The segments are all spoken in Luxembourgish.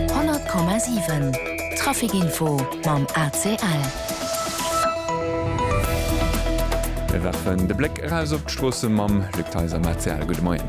100,7 Trafic Info mam ACL. Mir werfen de Bléck eraus op d'Stroosse mam Luc Theis am ACL. Gudde Moien.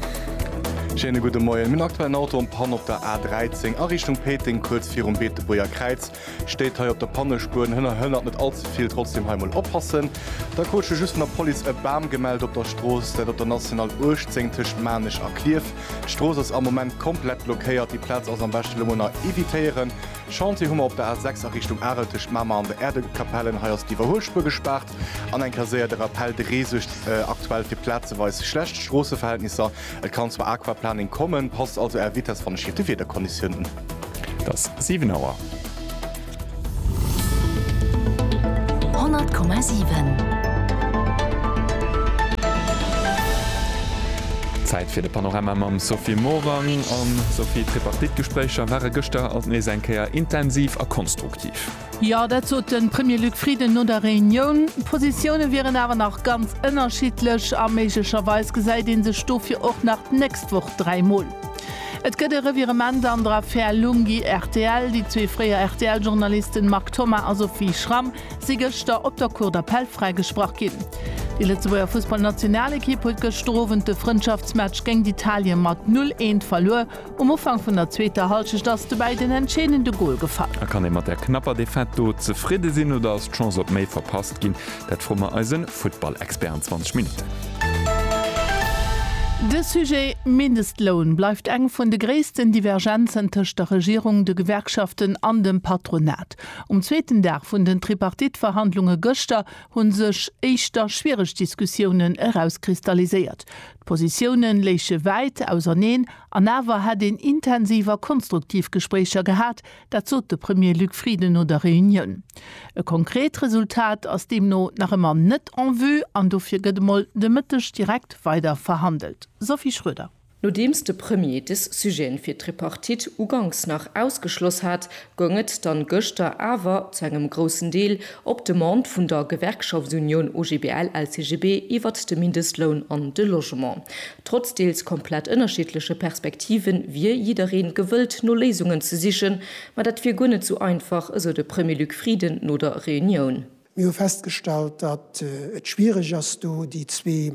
Schéine gudde Moien. Mir hunn aktuell en Auto am Panne op der A13 a Richtung Péiteng, kuerz virum Beetebuerger Kräiz. Steet hei op der Pannespuer, Hënner hënnert net all ze vill, trotzdem hei mol oppassen. Da krut scho just vun der Police e Bam gemellt op der Strooss, dat op der National 18 tëscht Maarnech a Klierf. D'Strooss ass am Moment komplett blockéiert, déi Plaz ass am beschte lo mol nach evitéieren. Chantier hu mer op der A 6 a Richtung Arel tëscht Mamer an de Äerdekapellen, hei ass d'Iwwerhuelspuer gespaart. An eng Kéier séier de Rappel, De Ree suergt aktuell fir plazeweis schlecht Stroosseverhältnisser, et kann zur Aquaplaning kommen, passt also Är Vitess wann schiefe Wiederkonditiounen. Et ass 7 Auer. 100,7 Zäit fir de Panorama mam Sophie Morang. An, Sophie, d'Tripartite-Gespréicher ware gëschter alt nees eng Kéier intensiv a konstruktiv. Jo, dat sot de Premier Luc Frieden no der Reunioun. D'Positioune wieren awer nach ganz ënnerschiddlech a méiglecherweis gesäit ee sech dofir och nach d'nächst Woch dräi Mol. Et gëtt e Revirement an der Affär Lunghi-RTL. Déi zwee fréier RTL-Journalisten Marc Thomas a Sophie Schramm si gëschter op der Cour d'Appel fräigesprach ginn. Déi Lëtzebuerger Fussballnationalekipp huet gëschter Owend de Frëndschaftsmatch géint Italien mat 'null eent' verluer. Um Ufank vun der zweeter Hallschecht ass de Bäi den entscheedende Gol gefall. A kann ee mat der knapper Defaite do zefridde sinn oder ass d'Chance op méi verpasst ginn? Dat froe mer eise Futtballexpert an 20 Minutten. De Sujet Mindestloun bleift eng vun de gréissten Divergenzen tëscht der Regierung, de Gewerkschaften an dem Patronat. Um zweeten Dag vun den Tripartite-Verhandlunge gëschter hu sech éischter schwiereg Diskussiounen erauskristalliséiert. D'Positiounen léiche wäit auserneen an awer hätt een intensiv a konstruktiv Gespréicher gehat, dat sot de Premier Luc Frieden no der Reunioun. E konkret Resultat ass deemno nach ëmmer net en vue an dofir gëtt emol de Mëtteg direkt weider verhandelt. Sophie Schroeder. Nodeems de Premier des Sujeten fir d'Tripartite uganks nach ausgeschloss hat, goung et dann gëschter awer, zu engem groussen Deel op Demande vun der Gewerkschaftsunioun OGBL-LCGB, iwwert de Mindestloun an de Logement. Trotz deels komplett ënnerschiddleche Perspektive wier jiddereen gewëllt no Léisungen ze sichen, ma dat wier guer net sou einfach, esou de Premier Luc Frieden no der Reunioun. Mir hu festgestallt, datt et schwiereg ass, do déi zwee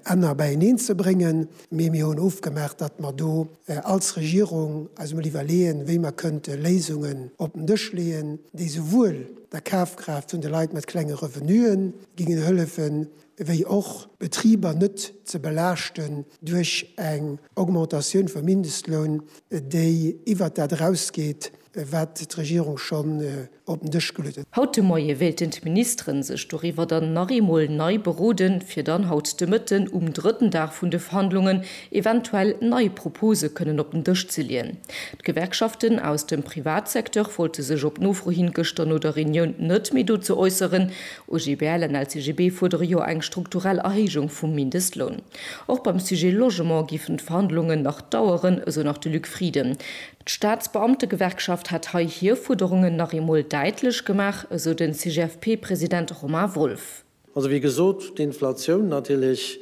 Enner beieneen ze bréngen, mee mir hunn ofgemaach, datt mer do als Regierung eis emol iwwerleeën, wéi mer kënnte Léisungen op den Dësch leeën, déi souwuel der Kafkraaft vun de Leit mat klenge Revenuen gingen hëllefen, wéi och d'Betriber net ze belaaschten duerch eng Augmentatioun vum Mindestloun, déi iwwert dat erausgeet, wat d'Regierung schonn op den Dësch geluet huet. Haut de Moie wéilten d'Ministeren sech doriwwer dann nach eemol nei beroden, fir dann haut de Mëtten um drëtten Dag vun de Verhandlungen eventuell nei Propose kënnen op den Dësch ze leeën. D'Gewerkschaften aus dem Privatsecteur wollte sech op Nofro hin gëschter no der Reunioun net méi dozou äusseren, OGBL an LCGB fuerdere jo eng strukturell Erhéijung vum Mindestloun. Och beim Sujet Logement géifen d'Verhandlungen nach daueren, esou nach de Luc Frieden. D'Staatsbeamtegewerkschaft hätt hei hir Fuerderungen nach eemol däitlech gemaach, esou de CGFP-President Romain Wolff. Also wéi gesot, d'Inflatioun natierlech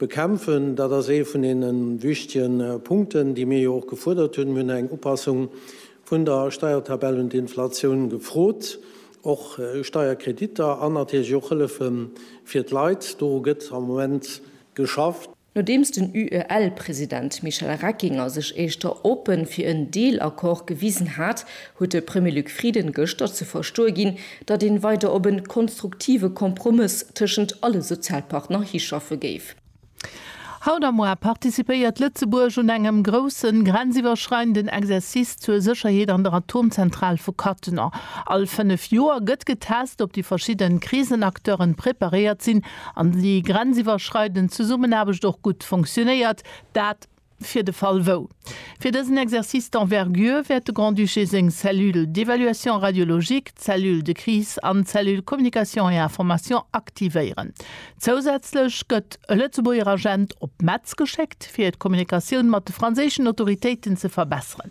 bekämpfen, dat ass ee vun deene wichtege Punkten, déi mir jo och gefuerdert hunn. Mir hunn eng Upassung Vun der Steiertabell un d'Inflatioun gefrot. Och Steierkrediter an natierlech och Hëllefe fir d'Leit, doru gëtt am Moment geschafft. Nodeems den UEL-President Michel Reckinger sech éischter oppe fir en Deelaccord gewisen hat, huet de Premier Luc Frieden gëschter ze verstoe ginn, datt een weider op e konstruktive Kompromëss tëschent alle Sozialpartner hischaffe géif. Haut a moar participéiert Lëtzebuerg un engem groussen grenziwwerschreidenden Exercice zur Sécherheet an der Atomzentral vu Cattenom. All 5 Joer gëtt getest, ob déi verschidden Krisenacteuren preparéiert sinn an déi grenziwwerschreidend Zesummenaarbecht och gutt funktionéiert. Dat. Fir de Fall wou. Fir dësen Exercice d'envergure wäert de Grand-Duché seng Cellule d'évaluation radiologique, Cellule de crise an d'Cellule communication et information aktivéieren. Zousätzlech gëtt e Lëtzebuerger Agent op Metz geschéckt, fir d'Kommunikatioun mat de franséischen Autoritéiten ze verbesseren.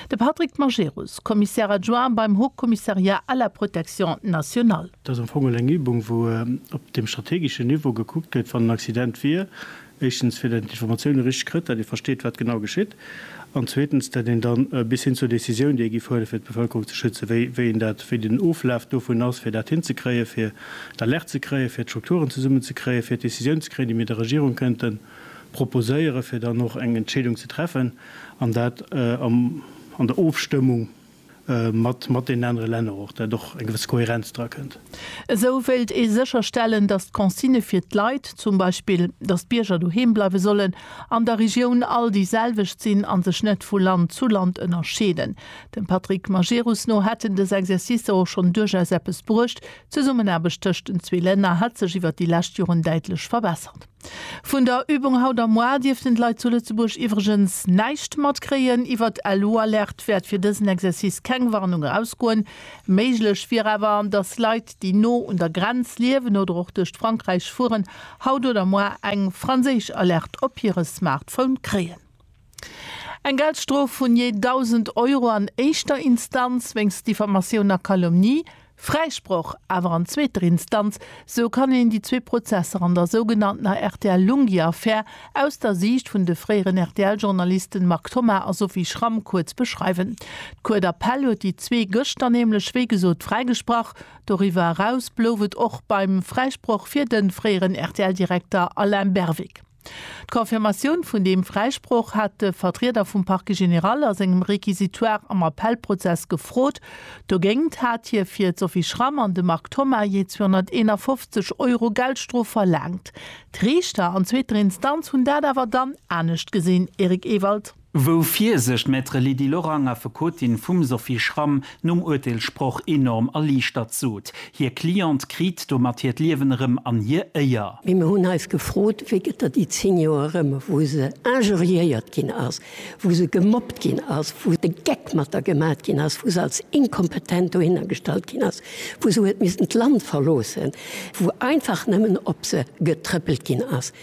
De Patrick Majerus, Commissaire adjoint beim Haut Commissariat à la protection nationale. Dat ass am Fong elo eng Übung, wou op deem strategeschen Niveau gekuckt gëtt, wann en Accident wier, Éischtens, fir datt een d'Informatiounen richteg kritt, datt ee versteet, wat genau geschitt, an zweetens, datt een dann bis hin zur Décisioun, déi ee giff huelen, fir d'Bevëlkerung ze schützen, wéi, wéi een dat, wéi den Oflaf dovun ass, fir dat hinzekréien, fir d'Alerte ze kréien, fir d'Strukturen zesummenzekréien, fir d'Décisioun ze kréien, déi mir der Regierung kënnte proposéieren, fir dann och eng Entscheedung ze treffen, an dat am, an der Ofstëmmung. mat deenen anere Länner och, dat och eng gewëss Kohärenz dra kënnt. Esou wéilt ee sécherstellen, datt d'Consigne fir d'Leit, zum Beispill, datt d'Bierger doheem bleiwe sollen, an der Regioun all déi selwecht sinn a sech net vu Land zu Land ënnerscheeden. Dem Patrick Majerus no hätten dës Exercicer och schonn duerchaus eppes bruecht. D'Zesummenaarbecht tëscht den zwee Länner hätt sech iwwer déi lescht Joren däitlech verbessert. Vun der Übung haut am Mois dierften d'Leit zu Lëtzebuerg iwwregens näischt matkréien. Iwwer d'LU-Alerte wäert fir dësen Exercice keng Warnung erausgoen. Méiglech wier awer, dass Leit, déi no un der Grenz liewen oder och duerch d'Frankräich fueren, haut oder moar eng franséisch Alerte op hire Smartphone kréien. Eng Geldstrof vun jee 1.000 Euro an éischter Instanz wéinst Diffamatioun a Calomnie, Fräisproch awer an zweeter Instanz, esou kann een déi zwee Prozesser an der sougenanntener RTL-Lunghi-Affär aus der Siicht vun de fréieren RTL-Journalisten Marc Thomas a Sophie Schramm kuerz beschreiwen. D'Cour d'Appel huet déi zwee gëschter nämlech wéi gesot fräigesprach. Doriwwer eraus blouf et och beim Fräisproch fir de fréieren RTL-Direkter Alain Berwick. D'Confirmatioun vun deem Fräisproch hat de Vertrieder vum Parquet général a sengem Réquisitoire am Appellprozess gefrot. Dogéint hat hie fir d'Sophie Schramm an de Marc Thoma jee 251 Euro Geldstrof verlaangt. D'Riichter an zweeter Instanz hunn dat awer dann anescht gesinn, Eric Ewald. Wou fier sech d'Maître Lydie Lorang, Affekotin vum Sophie Schramm, nom Urteelssproch enorm erliichtert sot. Hir Cliente kriit domat hiert Liewen erëm an hir Éier. Mee mir hunn eis gefrot, wéi gëtt der déi 10 Joer erëm, wou se injuriéiert ginn ass, wou se gemobbt ginn ass, wou de Geck mat der gemat ginn ass, wou se als inkompetent dohinner gestallt ginn ass, wou se huet missten d'Land verloossen, wou einfach nëmmen op se getrëppelt ginn ass.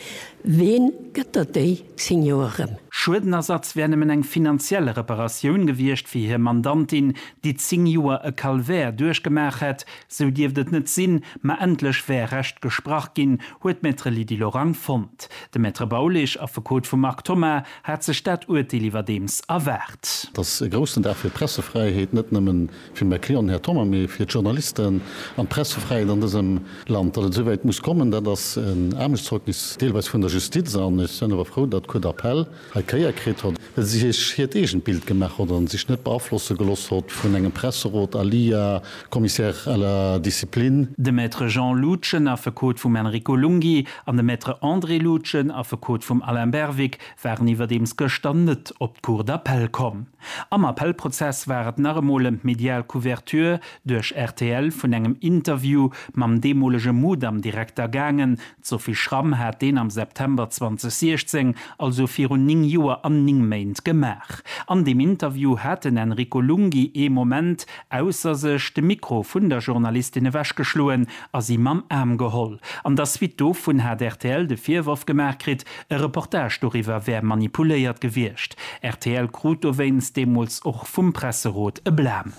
Ween gëtt der déi? 10 Joer rëm. Schuedenersatz wär nëmmen eng finanziell Reparatioun gewiescht fir hir Mandantin, déi 10 Joer e Calvaire duerchgemaach hätt. Sou dierft et net sinn, ma endlech wär Recht gesprach ginn, huet d'Maître Lydie Lorang fonnt. De Maître Baulig, Affekot vum Marc Thoma, hat sech dat Urteel iwwerdeems erwaart. Dass e groussen Dag fir d'Pressefräiheet net nëmmen Fir Macron, Här Thoma, mee fir d'Journalisten an d'Pressefräiheet an dësem Land. Datt et esouwäit muss kommen, dat ass en Aarmutszeugnis deelweis vun der Justiz. An ech sen awer frou, datt d'Cour d'appel hei Kéier kritt hott, well si sech hiert eegent Bild gemaach hott an sech net beaflosse geloss hott vun engem Presserot à lia Commissaire à la discipline. De Maître Jean Loutgen, Affekot vum Enrico Lunghi, an de Maître André Loutgen, Affekot vum Alain Berwick, waren iwwerdeems gëschter net op d'Cour d'appel komm. Am Appellprozess war et nach emol ëm d'medial Couverture duerch rtl vun engem Interview mam deemolege Mudam-Direkter gaangen. D'Sophie Schramm hat deen am September 2016, also virun 9 Joer an 9 Méint gemaach. An deem Interview hat den Enrico Lunghi ee Moment ausser sech, de Mikro vun der Journalistin ewechgeschloen a si mam Aarm geholl. An der Suite dovun hat rtl de Virworf gemaach kritt, E Reportage doriwwer wär manipuléiert gewiescht. Rtl krut dowéinst deemools och vum Presserot e Blam.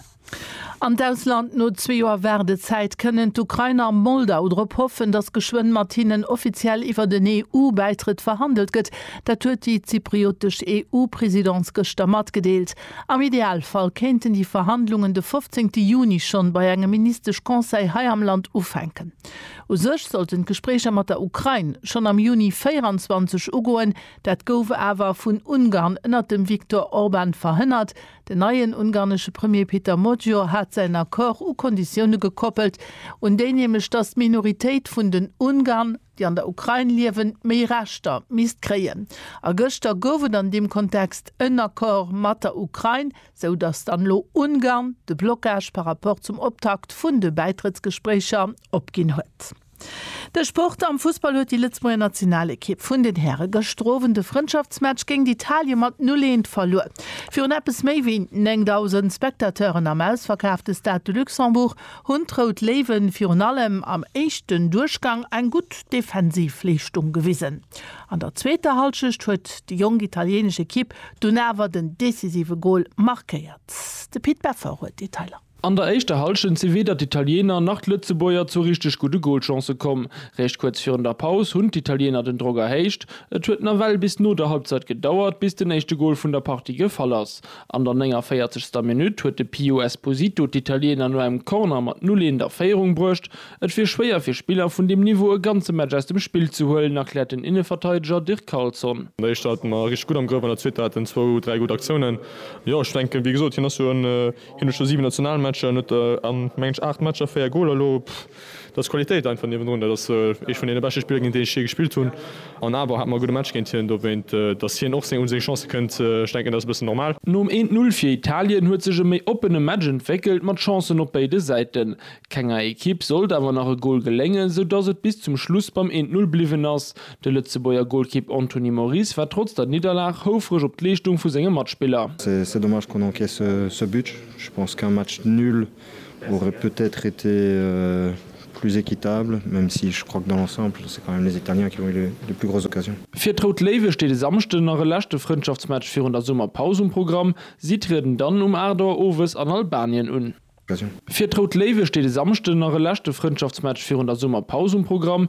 An d'Ausland, No zwee Joer Waardezäit kënnen d'Ukrainer a Moldau drop hoffen, datt geschwënn mat hinnen offiziell iwwert en EU-Bäitrëtt verhandelt gëtt. Dat huet déi zypriotesch EU-Presidence gëschter matgedeelt. Am Idealfall kéinten déi Verhandlungen de 15 Juni schonn bei engem Ministesch-Conseil hei am Land ufänken. U sech sollten d'Gespréicher mat der Ukrain schonn am Juni 24 ugoen. Dat gouf awer vun Ungarn ënnert dem Viktor Orban verhënnert. Den neien ungarnesche Premier Peter Magyar hat säin Accord u Konditioune gekoppelt, un déi nämlech, datt d'Minoritéit vun den Ungarn, déi an der Ukrain liewen, méi Rechter misst kréien. A gëschter gouf et an deem Kontext en Accord mat der Ukrain. sou dass dann elo Ungarn de Blockage par rapport zum Optakt vun de Bäitrëttsgespréicher opginn huet. De Sport am Fussball huet déi Lëtzebuerger Nationalekipp vun den Häre gëschter Owend de Frëndschaftsmatch géint Italien mat 0, 1 verluer. Virun eppes méi wéi 9.000 Spectateuren am ausverkaafte Stade de Luxembourg hunn d'Rout Léiwen virun allem am éischten Duerchgang eng gutt Defensivleeschtung gewisen. An der zweeter Hallschecht huet déi jonk italienesch Ekipp dunn awer den decisive Gol markéiert. De Pit Beffer huet d'Detailer. An der éischter Hallschent si weder d'Italiener nach d'Lëtzebuerger zu richteg gudde Golchancë komm. Réischt kuerz virun der Paus hunn d'Italiener den Drock erhéicht. Et huet nawell bis no der Halbzeit gedauert, bis den éischte Gol vun der Partie gefall ass. An der 49. Minutt huet de Pio Esposito d'Italiener no engem Corner mat 0, 1 a Féierung bruecht. Et wier schwéier fir Spiller vun deem Niveau e ganze Match aus dem Spill ze huelen, erkläert den Inneverteideger Dirk Carlson. An der éischter hate mer richteg gutt am Grëff, an der zweeter hat en zwou, dräi gutt Aktiounen. Jo, ech denken, wéi gesot, hien ass jo en, hien huet scho siwen Nationalmatcher, en huet a mengen ech aacht Matcher véier Goler. Elo, dat ass Qualitéit einfach niewendrun. Dat ass ee vun deene beschte Spiller, géint deen ech jee gespillt hunn. An awer hate mer e gudde Match géint hien. Dowéint, datt hien och un seng Chancë kënnt, ech denken, dat ass e bëssen normal. Nom Eent-Null fir Italien huet sech e méi oppene Match entwéckelt, mat Chancen op béide Säiten. Kenger Ekipp sollt awer nach e Gol geléngen, sou dass et bis zum Schluss beim 1, 0 bliwwen ass. De Lëtzebuerger Golkipp Anthony Moris war trotz der Nidderlag houfreg op d'Leeschtung vu senge Matspiller. C'est dommage qu'on encaisse ce but, je pense qu'un match nul aurait peut-être été plus équitable, même si je crois que dans l'ensemble c'est quand même les Italiens qui ont eu les plus grosses occasions. Fir d'Rout Léiwe steet e Samschden nach e leschte Frëndschaftsmatch virun der Summerpaus um Programm. Si trieden dann um 8 Auer owes an Albanien un. Fir d'Rout Léiwe steet e Samschden nach e leschte Frëndschaftsmatch virun der Summerpaus um Programm.